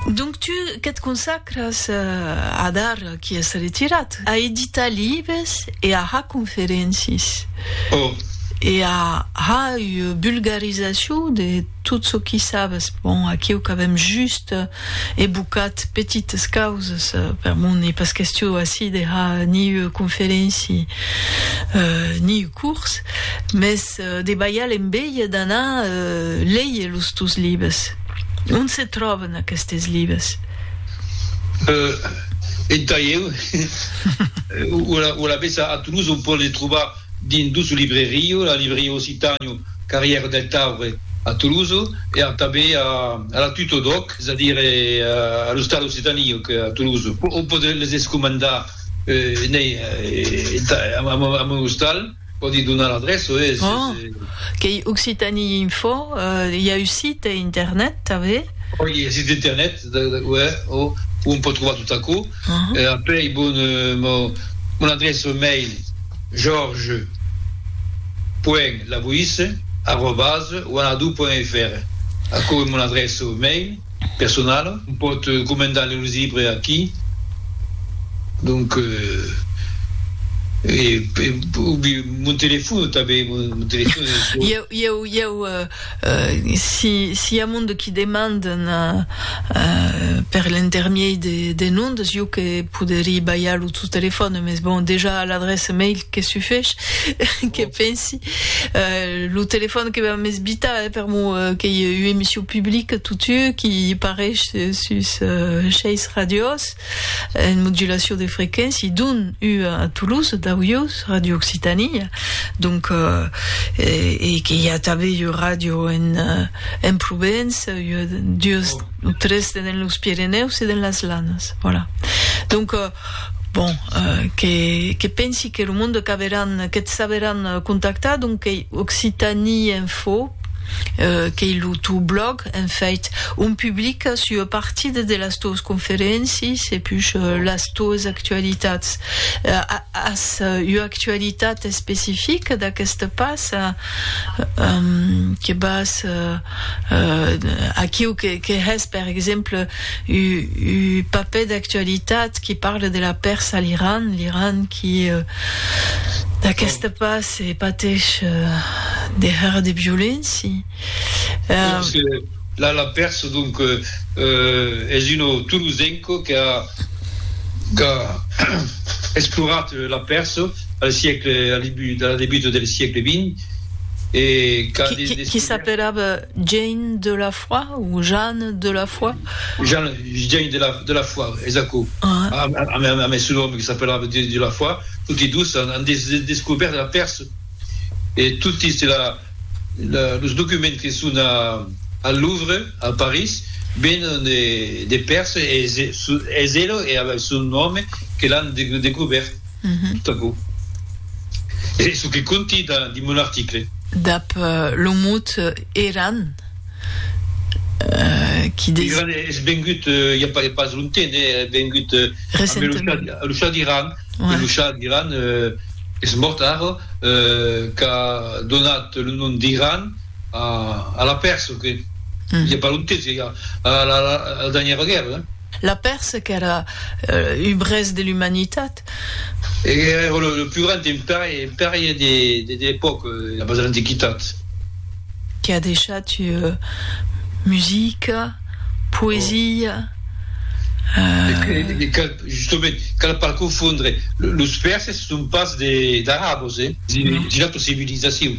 Donc tu que't consacras a d'ar qui es retirat, a editar libes e a har conferencis. Oh! E a har ua bulgarizacion de tot çò qui sabes. Bon, aquiu qu'avem just evocat petites causes per mon e pas question ací de har ni ua conferenci, ni curs, mès de balhar l'enveja d'anar léger los tos libres. On se tròben aquestes libres? En Taieu, o alavetz a Toulouse, on pòt les trobar dins dos librerios, la libreria Occitànio, carrièra del Taure, a Toulouse, e tanben a la Tuto Doc, es a dire a l'ostal Occitànio, a Toulouse. On pòt les escomandar N'ei a mon ostal, pòdi donar l'adreça, e se... Oh! Qu'ei Occitanie Info, i a un site internet tanben? Oh, i a un site internet, uè, oh, on pòt trobar tot aquò. Apèi bon, mon adreça mail, jorge point laboisse arrobas wanadoo point fr, aquò ei mon adreça mail. personala. On pòt comendar lo libre aquí. Donc e ubi mon telefono tanben, mon telefono es lo. Ieu, ieu, ieu, si si i a monde qui demanden per l'intermiei de de nondes, ieu que poderii balhar lo teu telefono, mes bon dejà a l'adresse mail que sufesh, que pensi. Euh, lo telefòn que vam esbitar, eh, per mo, eh, qu'ei ua emission publica totu, qui pareish sus seis radios, en modulacion de frequéncia, dont ua a Toulouse, dau ius, Radio Occitanie, donc, eh, e que i a tanben ua radio en, en Provence, ua, duas o tres tenen los Pirenèus e den las Lanas, voilà. Donc, Bon, que, que pensi que lo monde qu'averàn, que't saberàn contactar, donc qu'ei Occitanie Info, qu'ei lo teu blòg, en fait, on publicas ua partida de las teues conferéncies e pus las teues actualitats. As ua actualitat especifica d'aqueste pas que vas... Aquiu que hè's, per exemple, un papèr d'actualitat qui parle de la pèrsa a l'Iran, l'Iran qui, d'aqueste pas, patesh de hèr de violenci. La pèrsa, donc, es un tolosenco qu'a explorat la pèrsa al siecle, a la debuta del siecle vint. Qui s'apelava Jean de la Foi ou Jean de la Foi? Jean de la Foi, es aquò. Amb es autre òme qui s'apelava Jean de la Foi, toti dos an descobèrt la Pèrse e toti los documents que son al Louvre, a París, venen de Pèrse e es ela e son òme que l'an descobèrt. Tot aquò es çò que conti dins mon article. Dab lo mot Eran, qui designa. Eran es vengut i a pas longtemps, es vengut a lo chah d'Iran, e lo chah d'Iran es mòrt ara, qu'a donat lo nom d'Iran a la Pèrsa, i a pas longtemps, a la dernièra guèrra. La Pèrse qu'èra un brèst de l'umanitat. Èra lo plus grand empèri de l'epòca, abans de l'antiquitat. Qu'a deishat musica, poesia. Justement, cal pas confondre. Los Pèrses son pas d'arabos, es una autra civilizacion.